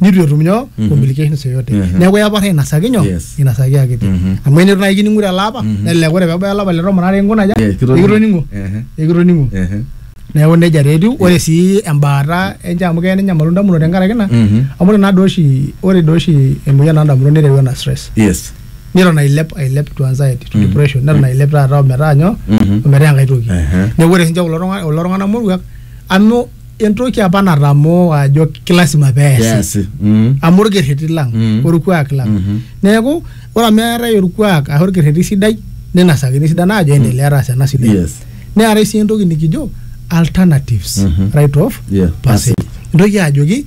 nitu etum nyoo Mhm. complications yoyote Mhm. neeku eyaporra inasaki nyoo Yes. inasaki akiti Mhm. amu enitu naaji kining'u tele apa Mhm. nelelek ore pebaya olapa le tomon are inkunaja Yes, kitoning'o. ekitoning'o Ehe. ekitoning'o Ehe. neeku nejia taa etiu ore sii embaata enche amu keya nenyamalu indamunot tenkaraki ina Mhm. amu ore naa doi oshi ore doi oshi emoyian oondamunot nereu ena stress Yes. neton ailep ailep to anxiety to Mhm. depression neton ailep taata ometaa nyoo Mhm. ometaa enkae toki Ehe. neeku ore sinche kulo tung'ana- kulo tung'anak moruak amu entoki apa natamoo ajo kilasima peesi Peasi. Mm. amu orkerreti lang Mm. orkuak lang Mhm. neeku ore amu eetae orkuak ashu orkerreti sidai ninasakini sidan ajo endelea taas ena sidai Yes. neetae sii entoki nikijo alternatives Mhm. right of Yeah, passage entoki ajoki